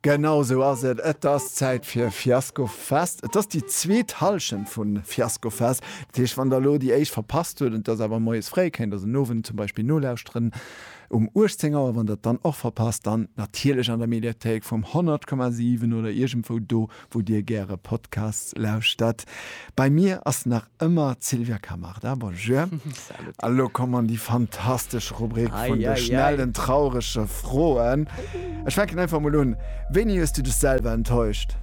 Genau esou ass et, et ass Zäit fir Fiasco Fest. Et ass déi zweet Hallschent vu Fiasco Fest. Dat heescht, wann der elo déi éischt verpasst hutt, et ass awer moies fréi, kéint der se den Owend zum Beispill nolauschteren um 18 Auer. Wann der et dann och verpasst, dann natierlech an der Mediathéik vum 100,7 oder iergendwou do. wou dir gäre Podcasts lauschtert. Bei mir ass nach ëmmer d'Sylvia Camarda, bonjour, a lo komm an déi fantastesch Rubrik vun de schnellen traurege Froen. Ech fänken einfach mol un, wéini hues du dech selwer enttäuscht?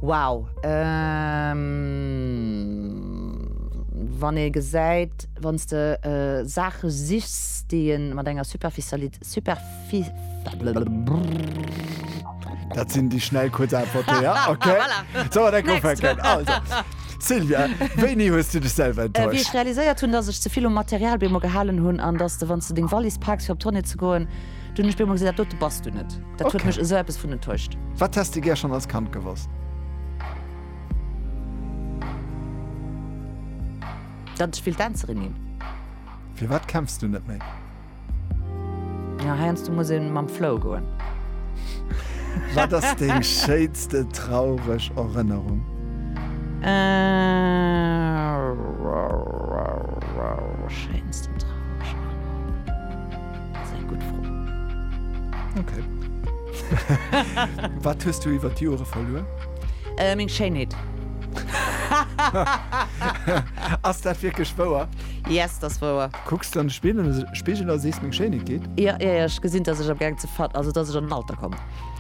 Wow, wann ee gesäit, wann s de Saache sichs, déi ee mat enger Superficiali Dat sinn déi schnell kuerz Äntwerte, ja? Okay. Voilà. So, an eng Next. ufänken. Also, Sylvia, wéini hues du dech selwer Wéi ech enttäuscht? realiséiert hunn, dass ech ze vill um Material bemol gehalen hunn an dass de, wann s de deng Wallis paaks fir op d'Tournée ze goen, dunn ech bemol gesinn, dat dote bass du net. Dat huet Okay. mech esou eppes vun enttäuscht. Wat häss de gär schonn als Kand gewosst? Datt ech wéilt Dänzerin ginn. Firwat kämpfs du net méi? Ja heiansdo muss een mam Flow goen. Wat ass deng schéinste traureg Erënnerung? Schéinsten traureg Erënnerung? Dat ass eng gutt Fro. Ok. Wat hues du iwwer d'Jore verluer? Meng Schéinheet. Ass dat wierklech wouer? Yes, dat ass wouer. Kucks de an de Spigel a sees meng Schéinheet geet? Jo, jo, jo, ech gesinn, dass ech am gaang ze ver-, also dass ech an den Alter komm.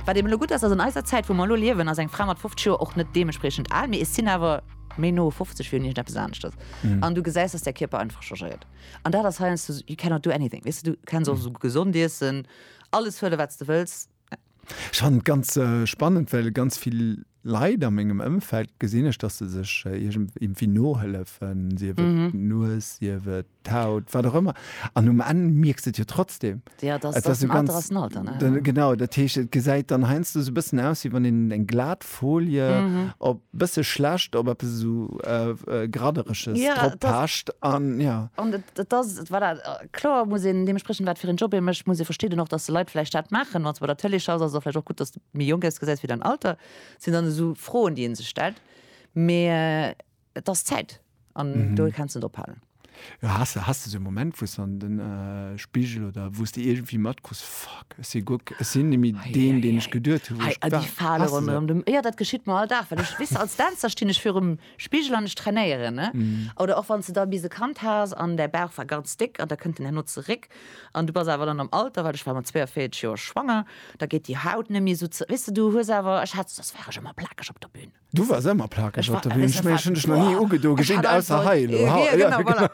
Wat eben elo gutt ass, dass an eiser Zäit, wou mer elo liewen, ass eng Fra mat 50 Joer och net deementspriechend al, mee et sinn awer méi no 50 wéi un iergendeppes aneschtes. An du gesäis, dass däi Kierper einfach changéiert. An dat ass heiansdo, you cannot do anything, weess de, du kenns och esou gesond iessen, alles huele wat s de wëlls, Ech fannen et ganz spannend, well ganz vill Leit a mengem Ëmfeld gesinn ech, dass se sech iergendwéi nohëllefen, sief et d'Nues, sief et d'Haut, wat och ëmmer, an um Enn mierks de et jo trotzdem. Genau, dat heescht, et gesäit dann heiansdo esou e bëssen aus, wéi wann een eng glat Folie op bësse schlecht op eppes esou Graddereges droppecht an jo. An dat ass voilà kloer muss een deementspriechend wat fir een Job ee mécht, muss ee versti den och, datt de Leit vläicht dat maachen. Wann s de bei der Tëlee schaffs, ass et och vläicht och gutt, datt s de méi jonk ass, gesäis wéi däin Alter. Dat sinn dann esou Froen, déi ee sech stellt, mee. Et ass Zäit an do kenns net ophalen. Has de has de sou Moment wous de an den Spigel oder wous de iergendwéi matkruss, fuck ech si guck ech sinn nemme deen deen ech geduet hu wou ech war? Jo dat geschitt mer all Dag, well ech wëss als Dänzer stinn ech virum Spigel an ech trainéieren ne oder och wanns de da bis e Kand has an däi Bauch war ganz déck an da kënnt en herno zeréck an du bass awer dann am Alter, well ech war mat 42 Joer schwanger, da geet déi Haut nemme sou ze weess de du hues awer ech hat dat war ech ëmmer plakeg op der Bühn. Du wars emmer plakeg op der Bühn, ech mengen ech hun dech nach ni ugedo gesinn, ausser hei elo. Jo genau, voilà.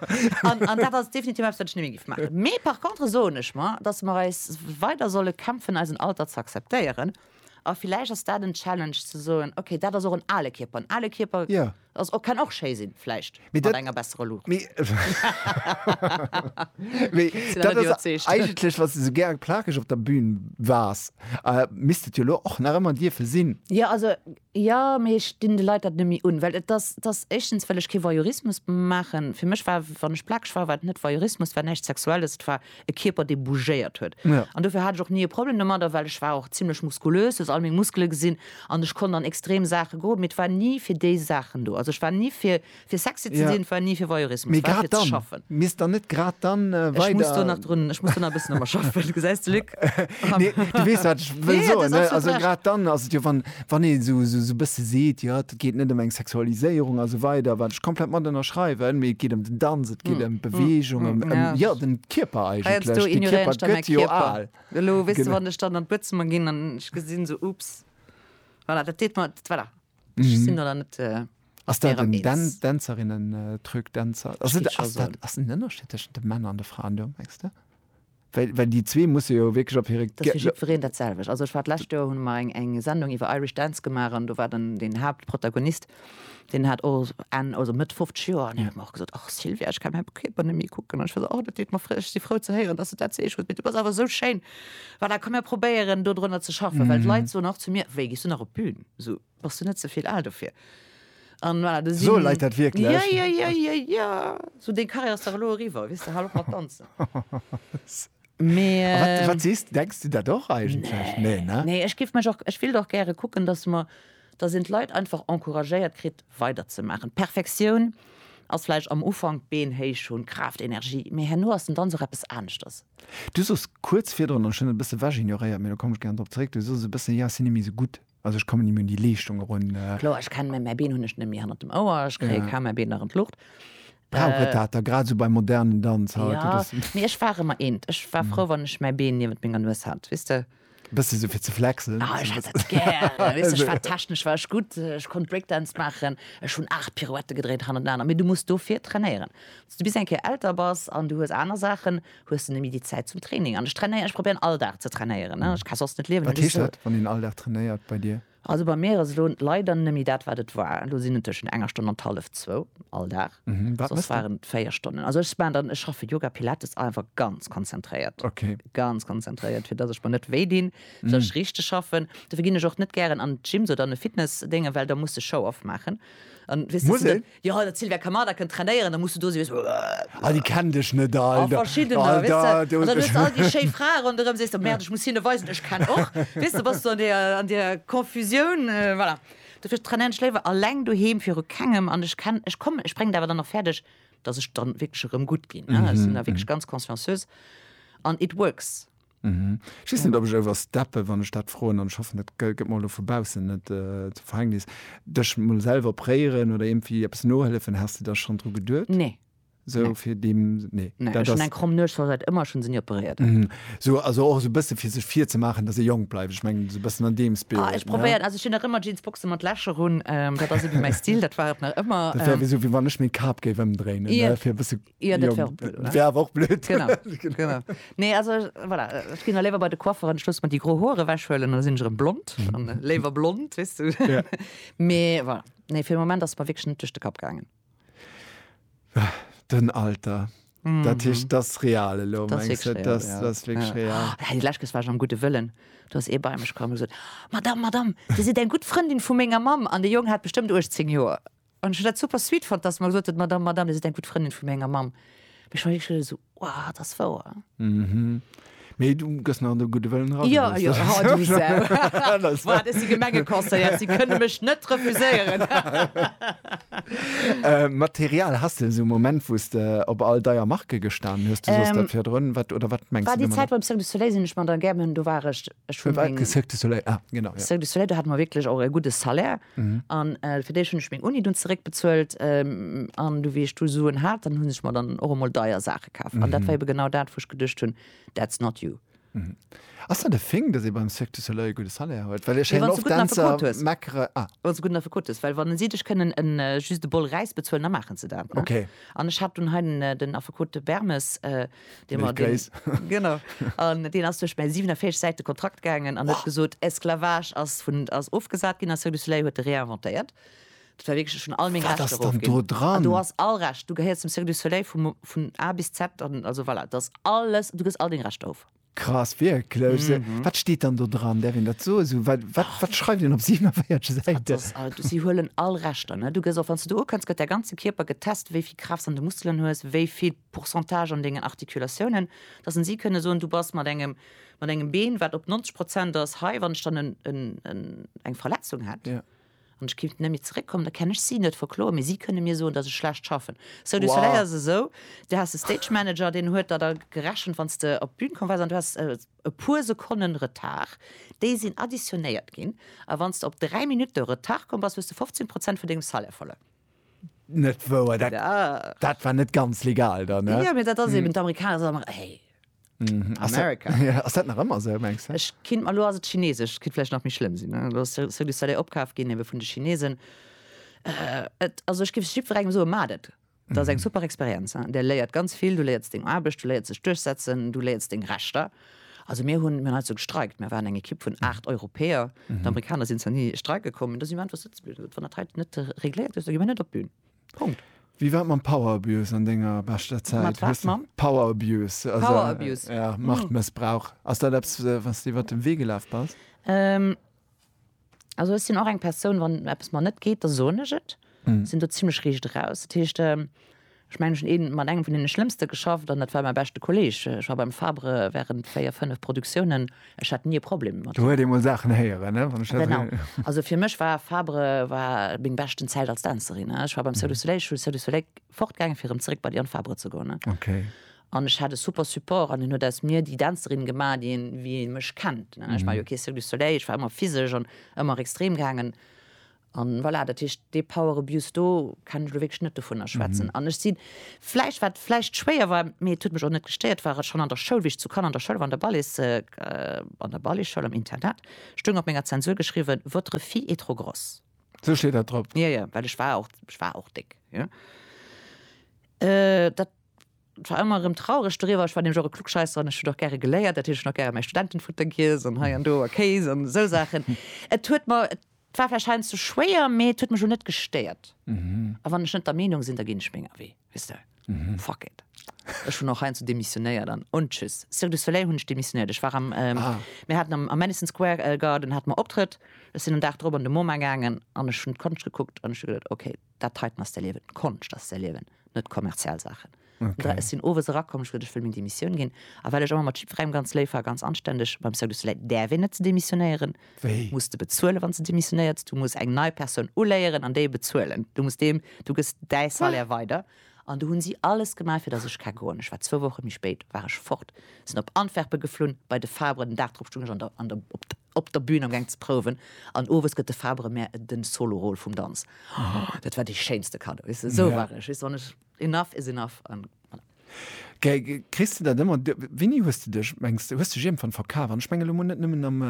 An dat ass definitiv eppes wat ech nemme giff maachen. Mee par contre soen ech mer, dass mer eis weider solle kämpfen eisen Alter ze akzeptéieren. A villäicht ass dat en Challenge ze soen, okay dat ass och en ale Kierper, en ale Kierper ass och, kann och schéi sinn vläicht. Mee mat enger besserer Luucht. Mee dat ass eigentlech, wann s de sou gär plakeg op der Bühn waars, misst et jo elo och nach ëmmer dierfe sinn. Jo, also jo, mee ech dinn de Leit dat net méi un. Well et ass, et ass éischtens, well ech kee Voyeurismus maachen. Fir mech war, wann ech plakeg war, war et net Voyeurismus, war näischt Sexuelles, et war e Kierper dee bougéiert huet an dofir hat ech och ni e Problem domadder, well ech war och zimlech muskulös, du hues all meng Muskele gesinn an ech konnt an extrem Saache geroden, mee et war ni fir déi Saachen do. Also ech war ni fir fir sexy ze sinn, et war ni fir Voyeurismus, et war fir ze schaffen. Mee grad dann, misst der net grad dann weider. Ech muss do nach drun, ech muss do nach e bëssen domat schaffen, gesäis de Luc. Nee, du weess wat ech wëll soen, also grad dann ass et jo, wann een esou e bësse seet, jo. Et geet net ëm eng Sexualiséierung a sou weider, wat ech komplett mat ënnerschreiwen, mee et geet ëm den Danz, et geet ëm d'Beweegung, ëm, ëm, jo, den Kierper Heiansdo eigentlech. Den ignoréieren Kierper ech da mäi gëtt jo Kierper. al. Elo, weess de, Genau. wann ech dann an d'Buedzëmmer ginn an ech gesinn esou, Oops, voilà, dat deet mer, dat, voilà, ech sinn der dann net Ass dat erëm en Dan eens. Dänzerinnen-Truc, Dänzer, ass Steet et, scho ass esou. dat, ass en Ënnerscheed tëschent de Männer an de Fraen do, mengs de? Well, well déi zwee musse jo wierklech op hire. Dat ass fir jiddwereen dat selwecht. Also ech war d'lescht Joer, hunn mer eng, eng Sendung iwwer Irish Dance gemaach an do war den, den Haaptprotagonist, deen hat och Enn, also Mëtt 50 Joer an hien huet mer och gesot, och Sylvia, ech kann mäi Kierper net méi kucken an ech war esou, oh dat deet mer fré, ech si frou ze héieren, dass de dat sees, huet, mee du bass awer esou schéin, voilà, komm mir probéieren do drënner ze schaffen, well d'Leit soen och zu mir, wéi gees du nach op d'Bün? Esou. Bass du net ze vill al dofir? An voilà, da Soe sinn- Leit dat wierklech? Ja, ja, ja, ja, ja. So, deng Karriär ass dach elo eriwwer, wiss de, hal op mat danzen. Mee, A wat, wat sees du? Denks du dat och eigentlech? Nee, ne? Nee, ech géif mech och, ech wéilt och gäre kucken, dass mer, dass een d'Leit einfach encouragéiert kritt, weiderzemaachen. D'Perfektioun ass vläicht am Ufank, d'Been héich hunn, Kraaft, Energie, mee herno ass den Danz och eppes aneschters. Du soss kuerz virdrun, an ech hunn et e bësse wechignoréiert, mee do komme ech gären drop zeréck, du soss e bëssen, jo, si net méi esou gutt. Also ech kommen nemmi un déi Leeschtung erun. Kloer, ech kennen mäi Been, hunn ech nemmi hannert dem Ouer, ech kréie kaum mäi Been nach an d'Luucht. Brauch et dat da, grad esou beim modernen Danz haut? Jo, mee ech war ëmmer eent, ech war frou wann ech mäi Been niewent menger Nues hat, weess de. Bësse sou fir ze flexen. Ah, ech hat dat gär, weess de, ech war technesch war ech gutt, ech konnt Breakdance maachen, ech hunn aacht Pirouettë gedréint hannertenaner. Mee du muss dofir trainéieren. Wann s du bis eng Kéier älter bass an du hues aner Saachen, Hues de nemmi déi Zäit zum Training? An ech trainéieren, ech probéieren all Dag ze trainéieren, ech ka soss net liewen. Wat heescht dat, wann een all Dag trainéiert bei dir? Also bei mir ass elo leider nemmi dat wat et war. Elo sinn et tëschent enger Stonn an hallef zwou all Dag. Wat mëss de? Véier Stonnen. Also ech maachen dann, ech schaffe Yoga, Pilates, einfach ganz konzentréiert. Okay. Ganz konzentréiert, fir dass ech mer net wéi dinn, fir dass ech richteg schaffen. Dofir ginn ech och net gären an Gyms oder an e Fitnessdéngen, well da muss de Show-off maachen. Muss een? Jo dat Sylvia Kamada kënnt trainéieren da muss du do sinn weess du. Ah déi kennen dech net Alter. A verschiddener weess du an da hues du all déi schéi Frae ronderëm sees du merde ech muss hinne weisen ech kennen och weess du bass du an deer an deer Confusioun voilà dofir trainieren ech léiwer alleng doheem viru kengem an ech kennen ech kommen ech bréngen et awer dann och fäerdeg dass ech dann wierklech erëm gutt ginn ech sinn da wierklech ganz consciencieus an it works. Mhm. Ech weess net, ob ech oversteppen, wann ech dat froen, an ech hoffen, dat gëtt mer elo vu baussen net zum Verhängnis. Dech emol selwer préieren oder iergendwéi eppes nohëllefen, has de da schonn dru geduet? Nee. Sou Nee. fir deem, nee. Nee, Dat ech hunn ass- eng kromm Nues, war säit ëmmer, ech hunn se ni operéiert. Mhm. Sou, also och esou e bësse fir sech virzemaachen, dass ee jonk bleift. Ech mengen, esou e bëssen an deem Spirit. Ah, ech ne? probéieren, also ech hunn nach ëmmer Jeansboxen mat Lächer un, ähm, dat ass ebe mäi Stil, dat war et nach ëmmer. Dat wär ähm, wéi sou, wéi wann ech meng Kap géif ëmdréinen, Ja. ne, fir e bësse Jo, dat wär och blöd, oder? Wär awer och blöd. Genau, genau. Nee, also, voilà, ech ginn da léiwer bei de Coiffeur an ech loosse mer déi gro Hoer ewechhuelen an da sinn ech erëm blond. An léiwer blond, weess du. Ja. Mee voilà, nee, fir de Moment ass et mer wierklech net duerch de Kapp gaangen. Den Alter. Dat heescht, dat ass real elo, Dat ass mengs wierklech du? real, Dat ja. ass wierklech real. Oh, déi lescht Kes war ech am gudde Wëllen. Do ass ee bei mech komm a gesot, Madame, Madame, Dir sidd eng gutt Frëndin vu menger Mamm. An de Jong hat bestëmmt 18 Joer. An ech hunn dat super sweet fonnt, dass mer gesot huet, d'Madame, Madame, Dir sidd eng gutt Frëndin vu menger Mamm. Mee ech war wierklech elo esou, Wow, dat ass wouer. Mee du gëss nach an de gudde Wëllen eran. Jo, jo, ha du Sau. Wow, dat si Gemengeconseillers, déi kënne mech net refuséieren. Material, Has de esou e Moment, wou s de op all deier Marke gestan hues? Du sooss dat virdrun. Wat oder wat mengs du domadder? War déi Zäit beim Cirque du Soleil, sinn ech mat der Gerben, do war ech. Ech hunn meng. Cirque du Soleil, ah, genau, ja. Cirque du Soleil, do hat mer wierklech och e gudde Salaire. An fir déi hunn ech meng Uni dunn zeréckbezuelt. An du wéi ech du Suen hat, dann hunn ech mer dann och emol deier Saache kaf. An dat war ebe genau dat, wou ech geduecht hunn, that's not you. Ass dat e Fing, dass ee beim Cirque du Soleil e gudde Salaire huet? Well ech héieren oft Dänzer meckere. Wann s de e gudden Affekot hues. Ah. Wann s de e gudden Affekot hues. Well wann si dech kënnen en, just e Bol Räis bezuelen, da maachen se dat. Okay. An ech hat dunn hei den Affekot Bermes. dee mer deen, genau, an deen ass duerch mäi 47 Säite Kontrakt gaangen an huet gesot, Esclavage ass vun, ass ofgesat ginn a Cirque du Soleil huet e réinventéiert. Dat war wierklech, ech hunn all meng Wat Rechter ass dann do erofginn. An du dran? has all Recht, du gehéiers zum Cirque du Soleil vum, vun A bis Z, an also voilà, et ass alles, du kriss all deng Rechter of. Krass, wierklech? Se, wat steet dann do dran? Däerf een dat soen? Esou, wat, wat, wat schreift een op 47 Dat Säiten? ass all, du, si huelen all Rechter, ne? Du gëss och, wann s du do ukënns, gëtt däi ganze Kierper getest, wéi vill Kraaft s an de Muskelen hues, wéi vill Pourcentage an dengen Articulatiounen, dass en si kënne soen, du bass mat engem, mat engem Been, wat op 90 Prozent ass, hei, wann ech dann en, en, en, eng Verletzung hätt. Ja. An ech kéint nemme zeréckkommen, da kenn ech si net verkloen, mee si kënne mir soen, dass ech schlecht schaffen. Cirque du Soleil ass esou, du has e Stage Manager, deen huet der da gerechent, wann s de op d'Bün komm waars an du has e puer Sekonnen Retard, déi sinn additionéiert ginn, a wann s de op dräi Minutte Retard komm bass, hues de 15 Prozent vun dengem Salaire verluer. Net wouer, dat, ja. dat war net ganz legal dann. Ne? Ja, mir dat ass eben d'Amerikaner sagen, hey, Mhm. Ass dat- America. Ja, ass dat nach ëmmer se mengst du? Ech kind mal lo as et chinesesch, kit vielleicht nach méi schlimm sinn. ne? Lo ass Cir- Cirque du Soleil opkaf ginn ewe vun de Chinesen. Äh, et, also ech gif jiddwerengem soe mat et. Dat ass eng super Experienz. hein. Der léiert ganz vill, du léierts deng Aarbecht, du léierts dech duerchsetzen, du léierts deng Rechter. Also mir hunn, mir hunn hei sou gestreikt, mir waren eng Ekipp vun 8 Europäer, d'Amerikaner sinn zwar ni streike kommen, da si mir einfach sëtze bliwwen. Dat wann dat hei net regléiert gëtt, da gi mir net op d'Bün. Punkt. Wéi war et mam Power Abuse an denger beschter Zäit? Mat wat, Hues de- mam? Power Abuse. Also, Power Abuse. Ja, Machtmëssbrauch. Ass dat eppes, äh, wat s de iwwer de Wee gelaf bass? Ähm. Also ech sinn och eng Persoun, wann eppes mer net geet, da soen ech et. Ech sinn do zimmlech riicht eraus. Dat heescht, ech mengen, ech hunn ee mat engem vun deene Schlëmmste geschafft an dat war mäi beschte Kolleeg. Ech war beim Fabre wärend véier, fënnef Produktiounen. Ech hat ni e Problem mat him. Do huet ee mol Saachen héieren, ne, wann ech dat esou. Genau. Also fir mech war Fabre war meng beschten Zäit als Dänzerin. Ech war beim Cirque du Soleil, ech hunn Cirque du Soleil fortgaangen, fir erëm zeréck bei Diane Fabre ze goen. Okay. An ech hat e super Support an hien huet aus mir déi Dänzerin gemaach, déi een, wéi ee mech kennt, ne. Ech war jo kee Cirque du Soleil, ech war ëmmer physesch an ëmmer extrem gaangen. An voilà, dat heescht, dee Power Abuse do kann ech elo wierklech net dovunner schwätzen. An ech si vläicht, wat vläicht schwéier war, mee et huet mech och net gestéiert, war schonn an der Schoul, wéi ech zu Cannes an der Schoul war, an der Ballets, an der Balletschoul, am Internat, stoung op menger Zensur geschriwwen, Votre fille est trop grosse. Sou steet dat drop? Jo, jo, well ech war och, ech war och déck, jo. Dat. Et war ëmmer erëm traureg doriwwer. Ech war nämlech och e Klugscheisser an ech huet och gäre geléiert. Dat huet ech nach gäre mäi Studentenfutter giess an hei an do a Kéis an esou Saachen. Et huet mer, et war vläicht heiansdo schwéier, mee et huet mech lo net gestéiert. A wann ech net der Meenung sinn, da ginn ech menger Wee, weess de. Fuck it. Ech hunn och heiansdo demissionéiert an und tschüss. Cirque du Soleil hunn ech demissionéiert. Ech war am, mir haten am, am Madison Square Garden hate mer Optrëtt. Ech sinn en Dag drop an de MoMA gaangen an ech hunn d'Konscht gekuckt an ech hu geduet, okay, dat heiten ass d'Erliewen, d'Konscht ass d'Erliewen, net kommerziell Saachen. Okay. Ech sinn owes erakomm, ech wëll, ech wëll meng Demissioun ginn. A well ech ëmmer mat jiddwerengem ganz léif war, ganz anständeg, beim Cirque du Soleil däerf een net demissionéieren. Wéi? Muss de bezuelen, wann s de demissionéiers. Du muss eng nei Persoun uléieren an déi bezuelen. Du muss deem, du gëss däi Salaire weider. An du hunn si alles gemaach, fir dass ech ka goen. Ech war zwou Woche méi spéit war ech fort, sinn op Antwerpen geflunn, bei de Fabre, den Dag drop stung ech an der, an der, op der, op der Bühn am Geng ze prouwen an owes gëtt de Fabre mär den Solo-Rôle vum Danz. Dat war dee schéinste Cadeau, weess de, esou war ech, weess de, wann ech, enough is enough an voilà. Kriss de dat ëmmer, wéini hues de dech, mengs de, hues de dech iergendwann verkaf? An ech mengen elo mol net nëmmen am,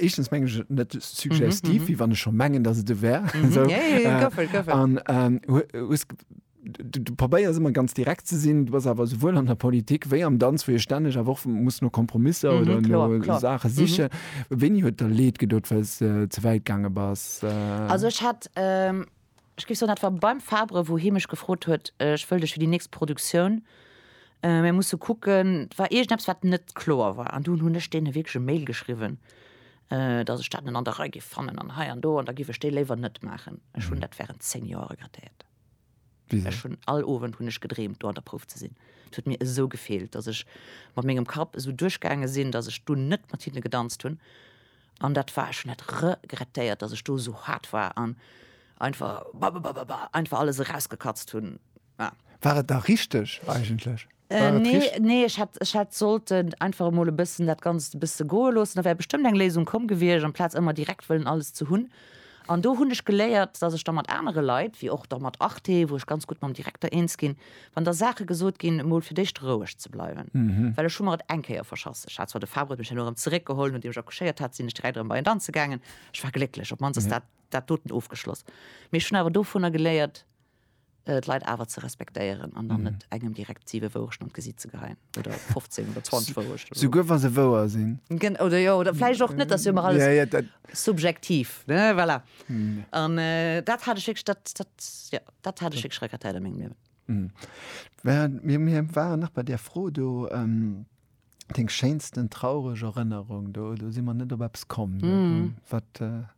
éischtens mengen ech et net suggestiv, wéi wann ech scho mengen, datt et e wär, esou, an hues, Du probéiers ëmmer ganz direkt ze sinn, du bass awer souwuel an der Politik wéi am Danz, wou ee stänneg awer och muss no Kompromisser oder no Klar, klar. Saache sichen. Wéini huet der leed gedot, well s de ze wäit gaange bass? Also ech hat, ech géif soen, dat war beim Fabre, wou hie mech gefrot huet, ech wëll dech fir déi nächst Produktioun, mir musse kucken, et war iergendeppes, wat net kloer war. An dunn hunn ech deene wierklech e Mail geschriwwen, datt ech dat net an der Rei géif fannen an hei an do an da géif ech dee léiwer net maachen. Ech hunn dat wärend zéng Joer regrettéiert. Ech hunn all Owend hunn ech gedreemt do an der Prouf ze sinn. Et huet mir esou gefeelt, datt ech mat mengem Kapp esou duerchgaange sinn, datt ech do net mat hinne gedanzt hunn. An dat war, ech hunn dat regrettéiert, datt ech do esou haart war an einfach bababababa einfach alles erausgekatzt hunn. War et da richteg eigentlech? Nee, ech hätt sollt einfach emol e bëssen dat Ganzt e bësse goe loossen, da wär bestëmmt eng Léisung komm gewiescht, amplaz ëmmer direkt wëllen alles ze hunn. An do hunn ech geléiert, datt ech da mat anere Leit, wéi och da mat Arte, wou ech ganz gutt mam Direkter eens ginn, wann da Saache gesot ginn, emol fir d'éischt roueg ze bleiwen. Well ech hu mer et eng Kéier verschass. Ech hat zwar, de Fabre huet mech dann erëm zeréckgeholl, nodeem ech accouchéiert hat, sinn ech direkt erëm bei en danze gaangen. Ech war glécklech, op d'mannst ass dat doten ofgeschloss. Mee ech hunn awer dovunner geléiert. d'Leit awer ze respektéieren an dann mhm. net engem direkt 7 Wourechten an d'Gesiit ze geheien oder 15 oder 20 Wourechten. So, souguer wa se wouer sinn. Gen oder jo, oder fläich och net, dass jo alles ja, ja, dat subjektiv ne voilà. mhm. an äh, dat hat ech dat, dat, ja, dat hat ech schrecker Teil mengem Liewen. Mhm. Mir, mir waren nach bei der Fro do. Ähm, Deng schéinsten traureg Erënnerung do do si man net op Apps kommen mm. wat. Äh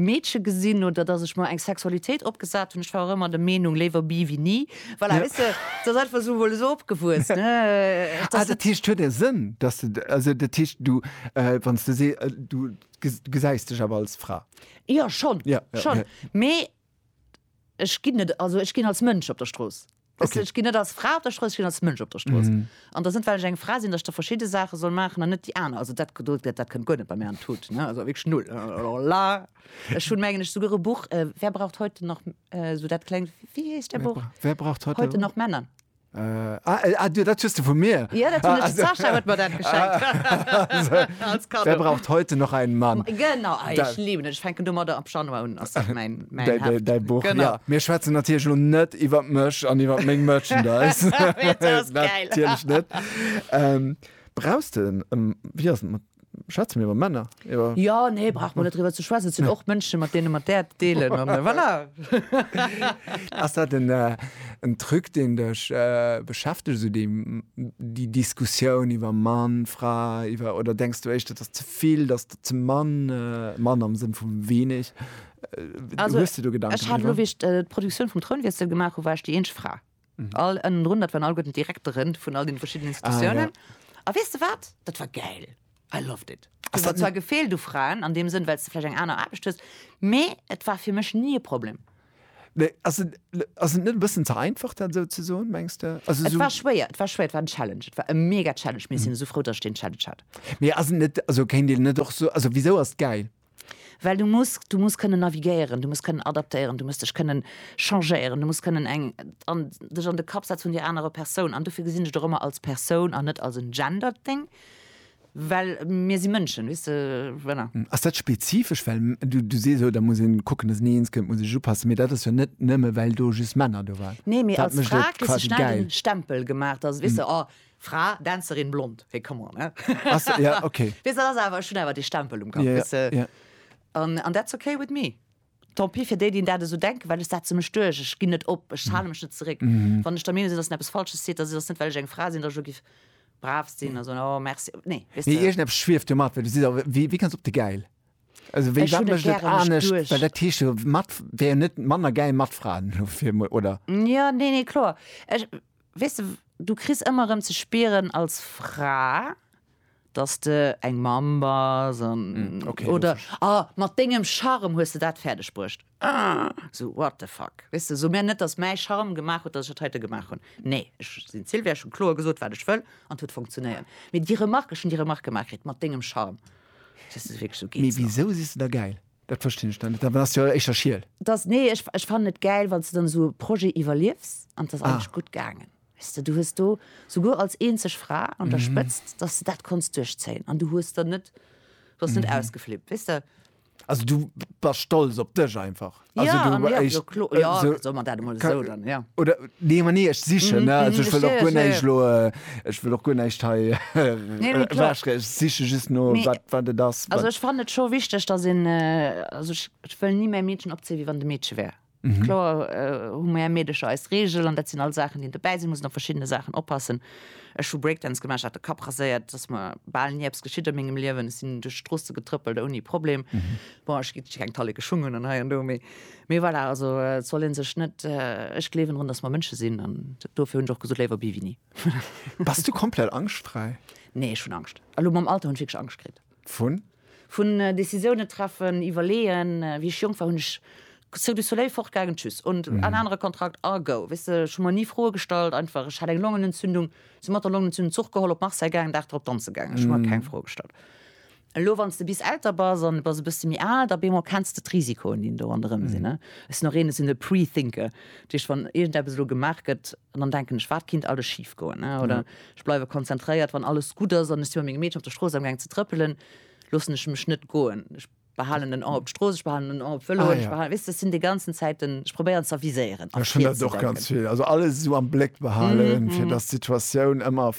Meedche gesinn oder dass ech mer eng Sexualitéit opgesat hunn. Ech war och ëmmer der Meenung, léiwer bi wéi ni. Voilà, weess de, et ass einfach esou, mol esou opgewuess, dass et. Dat heescht, et huet e Sënn, dass de, also dat heescht, du, wann s de sees, du gesäis dech awer als Fra? Jo, schonn, schonn, mee. Ech ginn net, also ech ginn als Mënsch op der Strooss. Weess de, ech ginn net als Fra op der Strooss, ech ginn als Mënsch op der Strooss. An et ass net, well ech eng Fra sinn, datt ech da verschidde Saache soll maachen an net déi aner. Also dat do, dat kënnt guer net bei mär an d'Tut, ne, also wierklech null, alors là. Ech hunn, mengen ech, souguer e Buch, Wer braucht heute noch, esou dat klengt, wéi heescht dat Buch? Wer braucht heute noch Männer? Ah, du, dat hues de vu mir. Ja, dat hunn ech. D'Sascha huet mer dat geschenkt. Als Cadeau. Wer braucht heute noch einen Mann? Genau, ah, ech liwen et. Ech fänken domadder ab Januar un, ass dat mäin Heft. Däi Buch, jo. Mir schwätzen natierlech elo net iwwer mech an iwwer meng Merchandise. Dat ass gäil. Natierlech net. Brauchs de en, wéi ass et mat. Schwätze mir iwwer Männer? Iwwer jo, nee, brauch mer net driwwer ze schwätzen. Et sinn och Mënschen, mat deene mer d'Äerd deelen an voilà. Ass dat en, en Truc, deen dech beschäftegt, esou déi, déi Diskussioun iwwer Mann, Fra, iwwer, oder denks du éischter, et ass ze vill, et ass der ze mann, mann am Sënn vu weeneg? Hues de do Gedanken driwwer? Ech hat elo, wéi ech d'Produktioun vum Trounwiessel gemaach hu, war ech déi eenzeg Fra. All ënnendrun, dat waren all gutten d'Direkteren vun all den verschiddenen Institutionen. Ah, ja. A weess de wat? Dat war gäil. I loved it. Ass dat zwar gefeelt u Fraen an deem Sënn, well s de vläicht eng aner Aarbecht hues, mee et war fir mech ni e Problem. Nee, ass et, ass et net e bëssen ze einfach, dat esou ze soen, mengs de? Also esou. Et war schwéier, et war schwéier, et war en Challenge, et war e mega Challenge, mee ech sinn esou frou, datt ech deen Challenge hat. Mee ass et net, also kéint een net och soen, also wisou ass et gäil? Well du muss, du muss kënnen navigéieren, du muss kënnen adaptéieren, du muss dech kënnen changéieren, du muss kënnen eng an dech an de Kapp setze vun där anerer Persoun. An dofir gesinn ech et och ëmmer als Persoun an net als en gendered Ding, well mir si Mënschen, weess de, voilà. Ass dat spezifesch, well du, du sees, oh da muss een kucken, dass een eens kënnt, muss ee sech upassen, mee dat ass jo net nëmme well do just Männer do waren. Nee, mee als Fra kriss de schnell den Stempel gemaach, dass, weess de, oh, Fra, Dänzerin, blond, hé come on, hä? Ja, ok. Weess dat ass awer, ech hunn awer dee Stempel um Kapp, weess de. Ja, ja. An that's ok with me. Tant pis fir déi, déi dat esou denken, well ech setze mech duerch, ech ginn net op, ech hale mech net zeréck. Wann ech der Meenung sinn, dass een eppes Falsches seet, da seet, ass net well ech eng Fra sinn, dass ech elo giff brav sinn a soen, oh merci, nee, weess Nee, de. iergendepes schwieft jo mat, well du sees awer, wéi, wéi kanns op de Gäil? Also wéi, Ech wat hunn et mécht et gäre mech anescht? duerch. Well dat heescht jo, mat, wär jo net manner gäil mat Fraen, elo fir emol, oder? Ja, nee, nee, kloer. Ech, Weess de, du kriss ëmmer erëm ze spieren als Fra, dass de eng Mamm bass an okay, oder a mat dengem Charme hues de dat fäerdeg bruecht. Sou what the fuck, weess de, sou mir net, dass mäi Charme gemaach huet, dass ech dat heite gemaach hunn. Nee, ech sinn d'Sylvia, ech hu kloer gesot, wat ech wëll an et huet funktionéiert. Mee déi Remark, ech hunn déi Remark gemaach kritt, mat dengem Charme, weess de, wierklech, sou geet et nach. Mee wisou siss de da gäil? Dat verstinn ech dann net, awer ass jo éischter Schiel. Dass nee ech ech fannen et gäil wanns de dann esou e Projet iwwerliefs an et ass Ah. eigentlech gutt gaangen. Weess de, du hues do souguer als eenzeg Fra an der Spëtzt, dass de dat konns duerchzéien an du hues der net, bass net ausgeflippt, weess de. Also du bass stolz op dech einfach. Also Ja, du an ja, jo, echt klo, ja, esou soe mer dat emol ka esou dann, ja. oder nee, ma nee ech sichen, ne, also ech wëll och guer Verstehe ech, ja, näischt ja. elo. Ech wëll och guer näischt hei ewechreeden. Ech siche just no, wat et ass. Also ech fannen et scho wichteg, datt een, also ech wëll ni mäi Meedchen opzéien, wéi wann et e Meedche wär. Kloer hu mär Meedecher eis Reegel an dat sinn all Saachen, déi een dobäi si muss an op verschiddene Saachen oppassen. Ech hu Breakdance gemaach, hat de Kapp raséiert, et ass mer bal ni eppes geschitt a mengem Liewen. Ech sinn duerch d'Stroosse getrëppelt ouni Problem. Bon, ech kritt keng Talleke Schung un an hei an do, mee Mee voilà, also et soll ee sech net, ech gleewen drun, datt mer Mënsche sinn an dofir hunn ech och gesot, léiwer Bivini. Bass du komplett angschtfräi? Nee, ech hunn Angscht. Elo mam Alter hunn ech wierklech Angscht kritt. Vun? Vun Décisiounen treffen, iwwerleeën. Wéi ech jonk war, hunn ech Cirque du Soleil, fortgaangen, tschüss und en anere Kontrakt a go. Weess de, ech hu mer ni Froe gestallt, einfach. Ech hat eng Longenentzündung, si mat der Longenentzündung Zuch geholl, op Marseille gaangen, Dag drop danze gaangen. Ech hu mer keng Froe gestallt. Elo wann s de bis älter bass an de bass e bësse méi al, da bemol kenns de d'Risikoen, déi do ronderëm sinn. Ech sinn och een, ech sinn e Pre-Thinker. Dat heescht, wann iergendeppes elo gemaach gëtt, dann denken ech, wat kinnt alles schif goen. Oder ech bleiwe konzentréiert, wann alles gutt ass an ech si mat mengem Meedchen op der Strooss amgaangen ze trëppelen, loossen ech mech net goen. Ech behalen en Oi op d'Strooss, ech behalen en Oi op d'Vëloen, ech behalen, weess de, ech sinn déi ganzen Zäit den, ech probéieren z'aviséieren a virzedenken. Ech hunn dat och ganz vill. Also alles esou am Bléck behalen, fir datt d'Situatioun ëmmer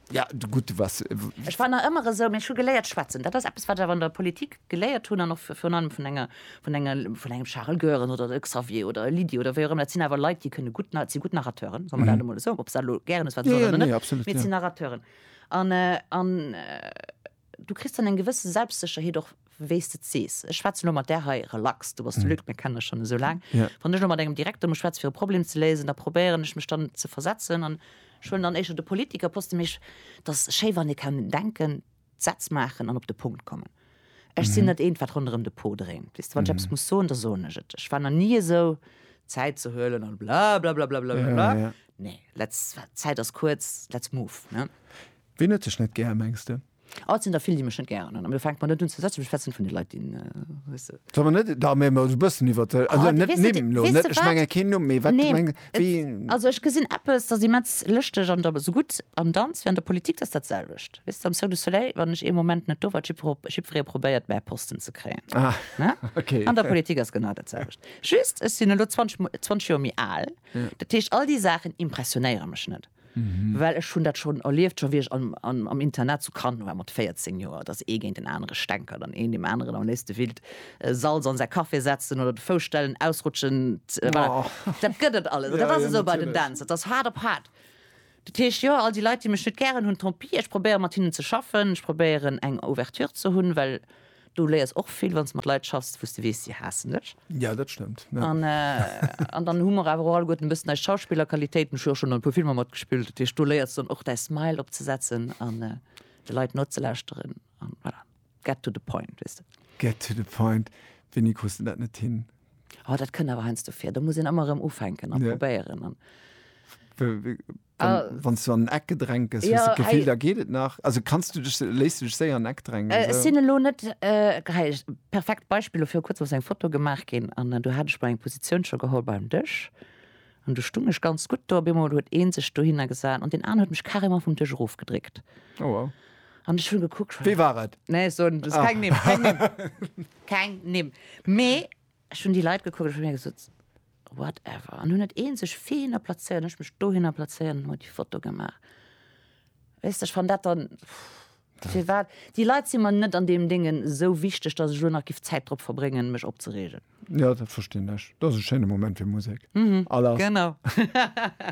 Ja, gutt, du wars. Ech war nach ëmmer esou, mee ech hu geléiert schwätzen. Dat ass eppes, wat ech awer an der Politik geléiert hunn an och virun allem vun enger, vun enger, vun engem Charel Goerens oder e Xavier oder e Lydie oder wéi och ëmmer. Dat sinn awer Leit, déi kënne gutt, si gutt Narrateuren, soe mer dat emol esou, ob se dat elo gären hues, wat se wollen oder net, mee et sinn Narrateuren. An, an Du kriss dann eng gewësse Selbstsécherheet och, wéi s de et sees. Ech schwätzen elo mat där hei relax, du bass de Luc, mir kennen dech schonn esou laang. Wann ech elo mat engem Direkter muss schwätzen, fir e Problem ze léisen, da probéieren ech mech dann ze versetzen an ech huelen dann éischter de Politiker poste. Mee ech, et ass schéi, wann ee kann denken, d'Sätz maachen an op de Punkt kommen. Ech sinn net eent, wat ronderëm de Pot dréint. Weess de, wann ech eppes muss soen, da soen ech et. Ech war nach ni esou, Zäit ze huelen an blablabla, blablabla. Nee, let's, Zäit ass kuerz, let's move, ne? Ween huet dech net gär, mengs de? Oh, et sinn der vill, déi mech net gären hunn. Mee fänkt mer net un ze sätzen, mech fetzen vun de Leit, déi, weess de. Soll mer net da mär mol e bëssen iwwert de, also net d'Nimm lo, net, ech menge keen Numm, mee wat meng, wéi. Also ech gesinn eppes, dat ass immens lëschteg an da sougutt am Danz wéi an der Politik, dat ass dat selwecht, weess de, am Cirque du Soleil, wann ech ee Moment net do war, jippere, jippferee probéiert mäi Posten ze kréien, ne? An der Politik ass genau dat selwecht, just ech sinn elo 20 Mol, 20 Joer méi al, dat heescht all déi Saachen impressionéiere mech net. Well ech hunn dat schonn erlieft, scho wéi ech am Internat zu Cannes war mat 14 Joer, datt ee géint en anere stänkert an een deem aneren am léifste willt Salz an säi Café setzen oder de Fouss stellen, ausrutschen, voilà. Dat gëtt et alles. An dat ass esou bei den Dance, dat ass haart op haart. Dat heescht, jo, all déi Leit, déi mech net gären hunn, tant pis, ech probéieren, mat hinnen ze schaffen, ech probéieren, eng Ouverture ze hunn, well Du léiers och vill wann s de mat Leit schaffs wou s de weess, si haassen dech. Jo, dat stëmmt. An dann hu mer awer och alleguerten e bëssen eis Schauspillerqualitéiten. Ech hu jo och schonn an e puer Filmer matgespillt. Dat heescht, do léiers de dann och däi Smile opzesetzen an de Leit nozelauschteren an voilà, get to the point, weess de. Get to the point. Wéini krus de dat net hin? Oh, dat kënnt awer heiansdo vir. Do muss een ëmmer erëm ufänken a probéieren. Wann s du an en Eck gedrängt gëss, hues de d'Gefill, da geet et nach? Also kanns du dech, léiss du dech séier an en Eck drängen? Ech sinn elo net, hei perfekt Beispill, dofir kuerz ass eng Foto gemaach ginn an do hat ech mol eng Positioun scho geholl beim Dësch an do stung ech ganz gutt do. Op eemol huet ee sech dohinner gesat an deen aner huet mech carrément vum Dësch erofgedréckt an ech hunn gekuckt. Wee war et? Nee, ech soen keng Nimm, keng Nimm, keng Nimm, mee. Ech hunn déi Leit gekuckt, ech hu mir gesot, whatever, an hunn et eenzeg fine plazéiert, ech mech dohinner plazéiert an hu déi Foto gemaach. Weess de, ech fann dat dann, firwat, déi Leit si mer net an deem Dengen esou wichteg, datt ech elo nach giff Zäit drop verbréngen, mech opzereegen. Jo, dat verstinn ech. Dat ass e schéine Moment fir Musek. Genau.